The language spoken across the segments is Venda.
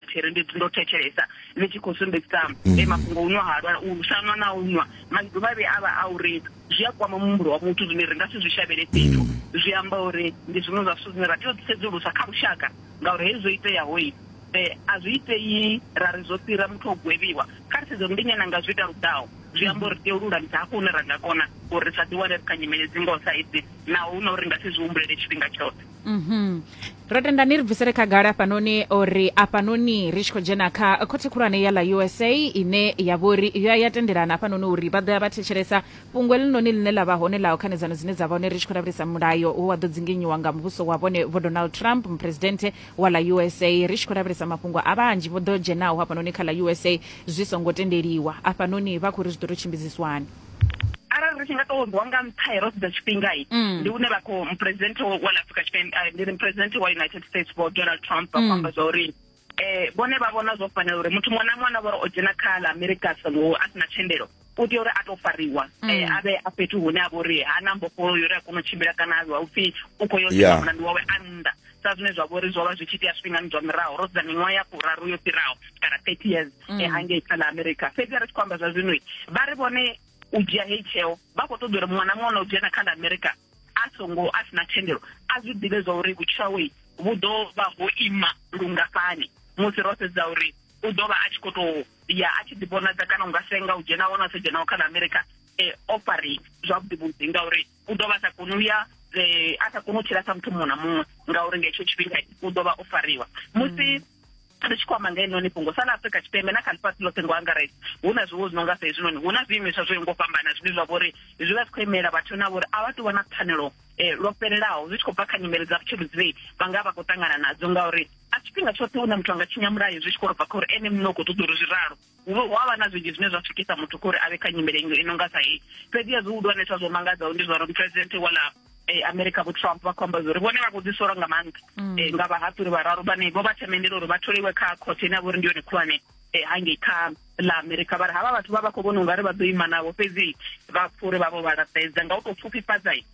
tshiri ndi ndo thetshelesa ni tshi khou sumbedzisa mm. e mafhungo unwa halwa u shanwa na unwa maḓuvha vhe avha a uri zwi a kwama muhumbulo wa muthu zwine ri nga si zwi shavhele fhethu mm. zwi amba uri ndi zwiṅwe zwa zwithu zwine ra tea u sedzulusa kha lushaka ngauri hezwi zwo iteaho i um a zwi itei ra ri zwo fhira muthu o gwevhiwa kha ri sedzo ndi nyana nga zwi ita ludaho zwi amba uri tea u lulamisa hafho hune ra nga kona uri ri sa ḓiwane ri kha nyimele dzi ngoho sa idzi naho hu na uri nga si zwi humbulele tshifhinga tshoṱhe Mhm. ro tenda ni ri bvisele khagala hafhanoni uri afhanoni ri tshi khou dzhena kha khothe khulwane ya ḽa usa ine ya vha uri yo ya tendelana hafhanoni uri vha ḓo ya vha thetshelesa fhungo eḽinoni ḽine ḽa vha hone ḽa khanedzano dzine dza vha hone ri tshi khou lavhelesa mulayo wo wa ḓo dzinginyiwa nga muvhuso wa vhone vho donald trump muphuresidennde wa ḽa usa ri tshi khou lavhelesa mafhungo a vhanzhi vho ḓo dzhenaho hafhanoni kha ḽa usa zwi songo tendeliwa afhanoni vha khou ri zwi ḓo tou tshimbidziswani arali ri tshi nga tou rwa nga nṱha ro sedza tshifhingai mm. ndi une vha khou muphuresidenthe wa ḽa afrika tshipembe eh, ndi muphuresidenthe wa united states vho donald trump vha khou mm. amba zwa uri um vhone vha vhona zwo fanela uri muthu muṅwe na muṅwe na vhori o dzhena kha ḽa amerika songo a si na thendelo u tea uri a to fariwa mm. eh, a vhe a fhethu hune a vha uri ha na mbofholo yo uri a kona u tshimbila kana a vha upfhi u khou yo mulandu wawe a nnḓa sa zwine zwa vhori zwo vha zwi tshi tea zwifhingani zwa miraho ro sedza miṅwaha ya furaru yo fhiraho kana thirty years mm. eh, hangei kha ḽa america fhedzi a ri tshi khou amba zwa zwinoi vha ri vhone u dzhia heyi tsheo vha khou ṱoḓa uri muṅwe na muṅwe na u dzhena kha ḽa america a songo a sina thendelo a zwi ḓivhe zwa uri vhutshawei vhu ḓo vha ho ima lungafhani musi ro sedza uri u ḓo vha a tshi khou tou ya a tshi ḓivhonadza kana u nga senga u dzhenaho na u sa dzhenaho kha ḽa america e eh, ofari zwavhuḓi vhuḓi ngauri u ḓo vha a sa koni u ya eh, a sa koni u tshila sa muthu muṅwe na muṅwe ngauri nga hetsho tshifhinga u ḓo vha o fariwa musi ri tshi khou amba nga inoni fhungo sa ḽa afrika tshipembe na kha ḽifhasi ḽoṱhe ngo angaredza hu na zwiwo zwi no nga sa hezwinoni hu na zwiimiswa zwo ngo fhambana zwine zwa vhori zwi vha zwi khou imela vhathu na vhori a vha tou vha na pfanelo eh, lwo fhelelaho zwi tshi khou bva kha nyimele dza vhutshilo dzine vha nga vha khou ṱangana nadzo ngauri a tshifhinga tshoṱhe hu na muthu a nga tshinya mulayo zwi tshi khou ro bva kha uri ene muṋe u khou ṱoḓa uri zwi ralo hu vha- hu a vha na zwinzhi zwine zwa swikisa muthu kha uri a vhe kha nyimele ino ino nga sa hei fhedziha zwihulwanesa zwo mangadzaho ndi zwa uri muphuresidenthe wala eh, america vho trump vha khou amba zwa uri vhone vha khou ḓisola nga maanḓa eh, nga vhahaṱuli vhararu vhane vho vha themendela uri vha tholiwe kha khothe ine ya vha uri ndi yone khulwane eh, hangei kha ḽa america vha ri havha vhathu vha vha khou vhona ungari vha ḓo ima navho fhedzi vha pfa uri vha vho vha laṱedza nga u tou pfufhifhadza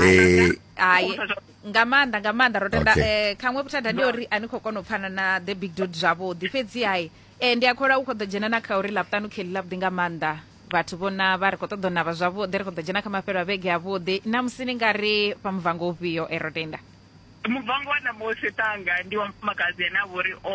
eh hai nga maanḓa nga maanḓa ro tenda okay. eh, khaṅwe vhuthada ndi uri a ni khou kona u pfana na the big dot zwavhuḓi fhedzi hai eh, ndi a khola u khou ḓo dzhena na kha uri laṱanu kheli ḽavhuḓi nga maanḓa vhathu vho navha ri khou ṱoḓa u navha zwavhuḓi ri khou ḓo dzhena kha mafhelo a vhege avhuḓi na musi ni nga ri fha muvango ufhio e eh, ro tenda Muvhango wa ṋamusi, Ṱhanga ndi wa mufumakadzi ane a vha uri o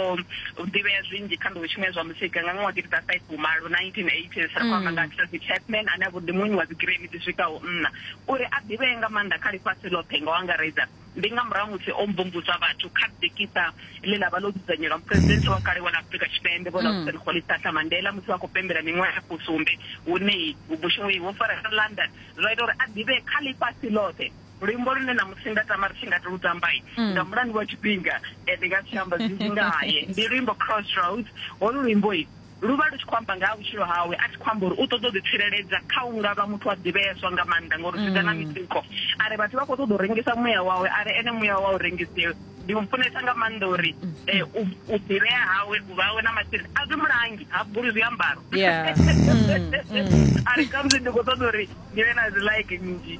ḓivhea zwinzhi kha nḓowetshumo ya zwa muzika nga ṅwaha wa gidi dza faifi fumalo, 1980s. Ri khou amba nga ha Tracy Chapman ane a vha uri ndi muwini wa dzigiremi dzi swikaho nṋa. Uri a ḓivhee nga maanḓa kha ḽifhasi ḽoṱhe nga u angaredza, ndi nga murahu ha musi o mvumvusa vhathu kha ḓikiṱa ḽe ḽa vha ḽo dzudzanyelwa muphuresidenthe wa kale wa ḽa Afrika Tshipembe Vho Laursen Rolihlahla Mandela musi vha khou pembela miṅwaha ya fusumbe hune vhushumeyi ho fara London, zwa ita uri a ḓivhee kha ḽifhasi ḽoṱhe. luimbo lune ṋamusi nda tama ri tshi nga ti lu tamba mm. nga mulandu wa tshifhinga eh, ndi nga si amba zwinzhi ngaye ndi luimbo crossroads holu luimbo i lu vha lu tshi khou amba nga ha vhutshilo hawe a tshi khou amba uri u ṱoḓa u ḓitsireledza kha u nga vha muthu a ḓivheeswa nga maanḓa ngauri zwi ḓa na mm. mitsiko a ri vhathu vha khou ṱoḓa u rengisa muya wawe a ri ene muya wawe u rengisiwe ndi mu funesa nga maanḓa uri mm. eh, u ḓivhea hawe u vhawe na masheleni a zwi mulangi ha buli zwiambaro mm, a ri kamusi ndi khou ṱoḓa uri ndi vhe na dzi like nnzhi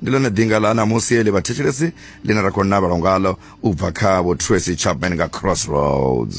ndi ḽone ḓinga ḽa ṋamusi ḽi vhathetshelesi ḽine ra khou navelwa ngaḽo u bva kha vho tracy chapman nga crossroads